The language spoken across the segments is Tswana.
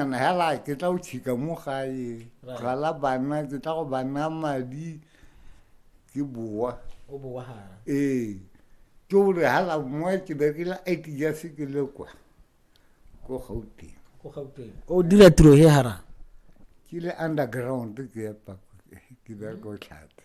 And hela ke tla o tshika mo gae gala bana ke tla go bana madi ke boa o boa ha ee ke o re hala mo ke berekela IT ya se ke le kwa go gauteng go gauteng o dira tiro he hara ke le underground ke ya pa ke bereka o tlhate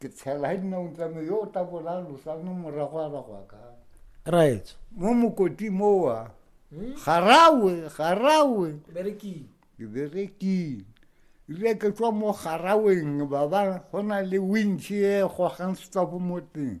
ke tshela ga dinao tsame yo o tabola losa no morago a bagwa ka right mo mokoti mowa hmm? garawe garawe berekile ke berekile ile ke tswa mo garaweng ba ba go na le wintšhe e gogang setsapo mo teng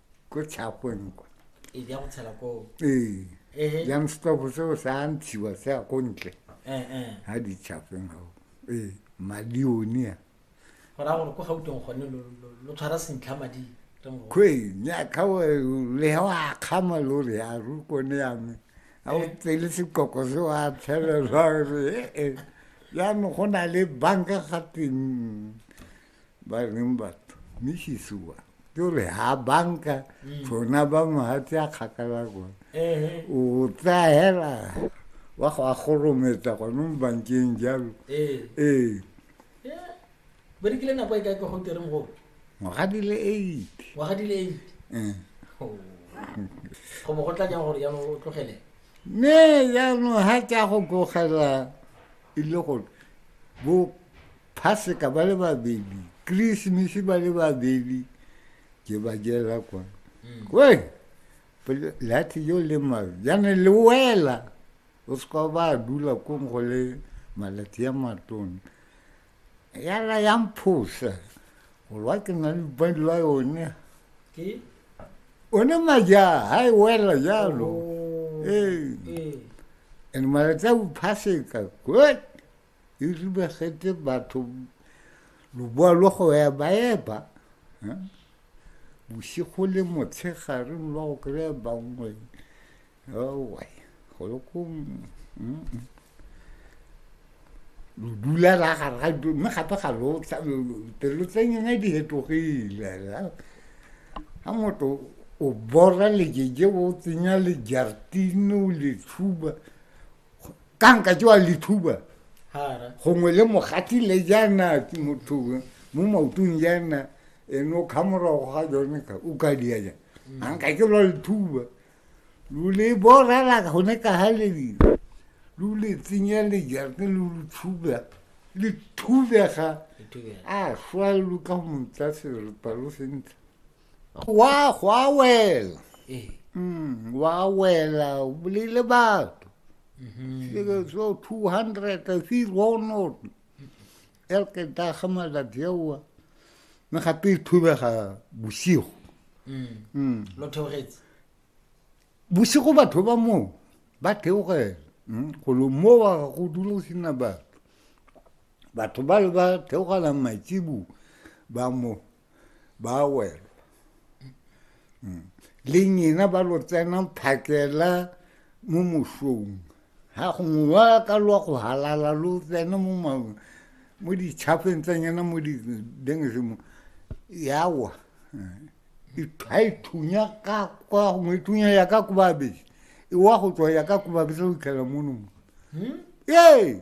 ko tshagweng kwa ee ya go tshela ko ee ehe yang stop seo sa ntshiwa se ya ko ntle eh eh ha di tshagweng gao ee madione a go ra gore ko gauteng gone lo- lo- lo tshwara sentlha madi re mo- kwe nyaka wa le ha wa kgama lo re ya ru kone ya me a o tsele sekoko se wa tshelelwa re ee ya no go na le banka ga teng ba reng batho misisi wa ke gore ha banka tsona mm. ba mohatse a kgakala kone o tsaya hela wa go a gorometsa gone mo bankeng jalo ee berekile nako e kae ka go tereng go ngwaga di le eight ngwaga di le eight eh. oh. go bo go tla jang gore jaanong o tlogele ne jaanong ga ke ya go tlogela e le gore bo Phaseka ba le babedi Christmas ba le babedi ke ba jela kwa mm. we lathi yo le mabe jane le wela o seka ba dula kong go le malatsi ya matone yala ya mphosa golwa ke na le badi la yone one maja ha e wela jalo oh, ee. and malatsi a bophaseka good e ribagetse batho loboa lwa go eba eba eh? bosigo le motshegare lwa go kry-a bangwe owa go le ko lo dula ra gare ga dilo mme gape ga lotelelo tsa nyena di hetogile ga motho o bora lejeje o tsenya lejartine o le tshuba ka nka jewa lethuba gongwe le mogati le jaana motho mo maotong jaana ene o kga morago ga jone ka o ka dia ja mm. a nka ke lwa lethuba lo le borela gone ka ga lebile lo le tsenya lejarte lo lo thuba le thubega a swa lo ka go motsa serepa lo sentle Gwa, gwa wela. Ee. Mm, gwa wela, o bolaile batho. Seke so 200, I see Ronald. El ke daga malatsi aowa. Mme gape e thubega bosigo. Mm. Lo theogetse. Bosigo batho ba moo ba theogela. Mm, Go lo mo wa ga go dula go sena batho. Batho ba le ba theogela matsibu ba mo. ba wela mm. le nyena ba lo tsena phakela mo mosong ga gongwe ba ka lwa go halala lo tsena mo maong mo ditšhafeng tsa nyena mo didengezemo yawa ga e thunya ka kwa gongwe e thunya ya ka kobabese e wa go tswa ya ka kobabese go itlhela mono ee hmm?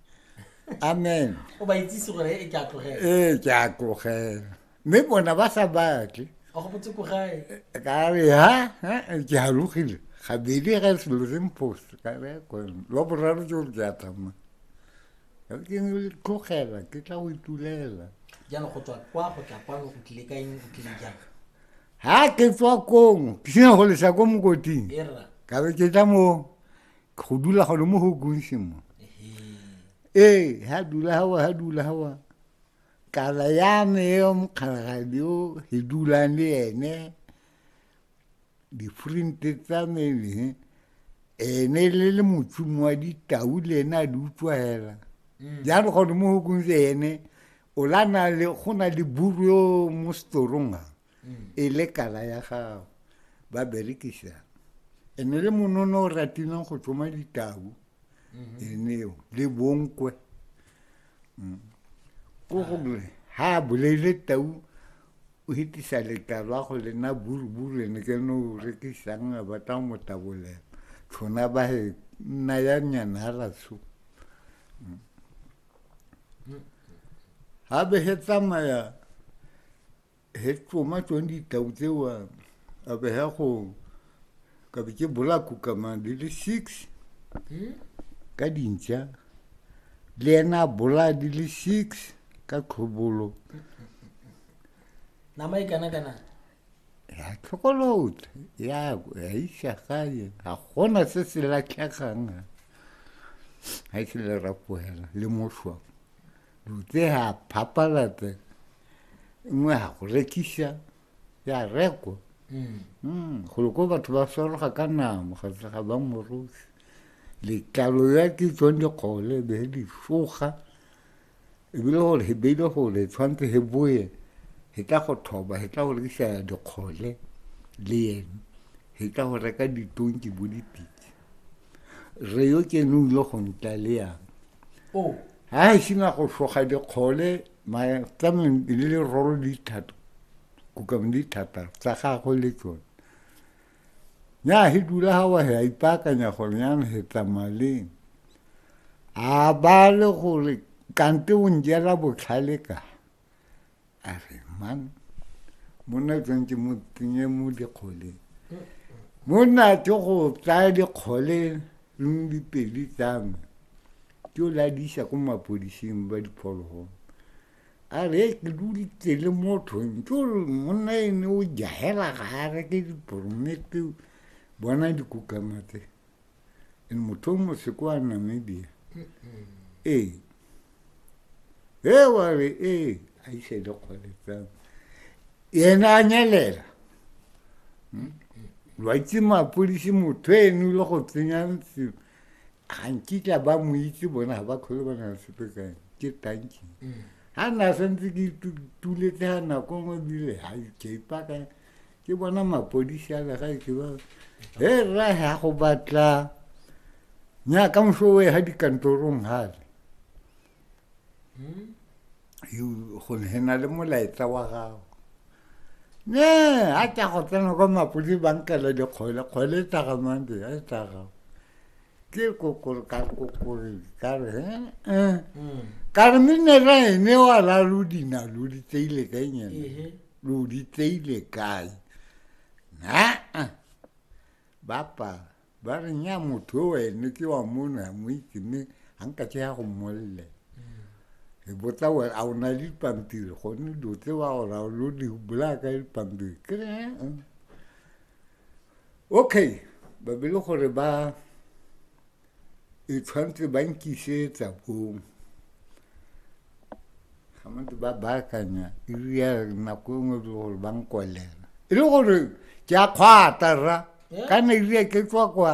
amen o ba itsise gore e ke a tlogela ee ke a tlogela mme bona ba sa batle go botse ko gae ka re ha ke halogile gabedi ga selo se mpost ka re kone lwa boraro ke gore ke a tsamaya ke tlogela ke tla go itulela jalo go tswa kwa go tla kwano o tlile ka eng o tlile jang ha ke tswa kong ke sena go lesa ko mokoting ka be ke tla mo go dula gone mo go kunse mo ee ha dula hawa ha dula hawa kala ya me yo mokgalagadi o e dulang le ene difrinte tsa me ene le le motsumo wa ditau le ene a di utswa hela mm. jalo gone mo go kunse ene o la na le go na le buru yo mo storong a e le kala ya gago ba berekisa e ne le monono o ratileng go tsoma ditau mhm. eneo le bonkwe mm. ko gore ha a boleile tau o hitisa letalo a go lena buruburu ene ke no o rekisang a batla go motabolela tshona ba he nna ya nyana a ratsho mm. mm. ha be he tsamaya he ke tsoma tsone ditau tsewa a be ya go ka be ke bolako kama di le six ka dintša le ena a bolaya di le six ka tlhobolo nama e kana kana ya tlhokolotla ya ya isa gae ga gona se se latlhegang ga e se le rapoela le moswa Rute ha papalata nngwe ha go rekisa ya rekwa mm. mm, golo ko batho ba soroga ka namo ga tsa ga ba morosi letlalo ya ke tswang dikgole be di soga ebile gore he beile gore tshwanetse he boye he tla go thoba he tla go rekisa dikgole le ene he tla go reka ditonki bo dipitse re yo ke ne o yo go ntaleyang oh. ga e sena go soga dikgole matsameng le le roro dithato kukang dithata tsa gagwe le tsone ya he dula ga wa ya ipaakanya gore ya he tsamaleng a ba le gore kante o njela botlhale ka a re man monna tswang ke motsenye mo dikgoleng monna ke go tsaya dikgole leng dipedi tsa me ke o la di isa ko mapodising ba diphologolo a re e ke dulitse le mothong ke ore monna e ne o jahela ga a reke diporomete bona dikukamatse in motho mo se kwa namibia ee e wa re ee a ise le kgole tsame yena a nyelela hmm? lo itse mapodisi motho eno le go tsenya sengwe ga nkitla ba mo itse bona ga ba kgole ba na le sepe ka ene ke tanki ga mm. na santse ke tuletse ga nako nngwe bile ga keipaka ke bona mapodisi a legaetsho ba he rra ya go batla nya ka moso o ga dikantorong gale go hena le molaetsa wa gago ne a tla go tsena kwa mapodi bankela dikgole kgole e tlagamande a e tlaga Qué cocor, car cocor, car hein, hein. Mm. Car min ne ra e ne wa la lu di na lu di te ile ke nye. Ihe. Lu di te ile kai. Na. ah. Bapa, ba re nya motho o ene ke wa mona mo itse me hanka tse ya go molle. E botsa wa a ona di pampiri go ne do tse wa go ra lu di bula ka di pampiri. Ke re, hein, hein. okay ba be le gore ba e tshwanetse ba nkisetsa bong ga mantse ba baakanya eria nako e nngwe le gore ba nkolela e le gore ke a kgwata rra kana eria ke tswa kwa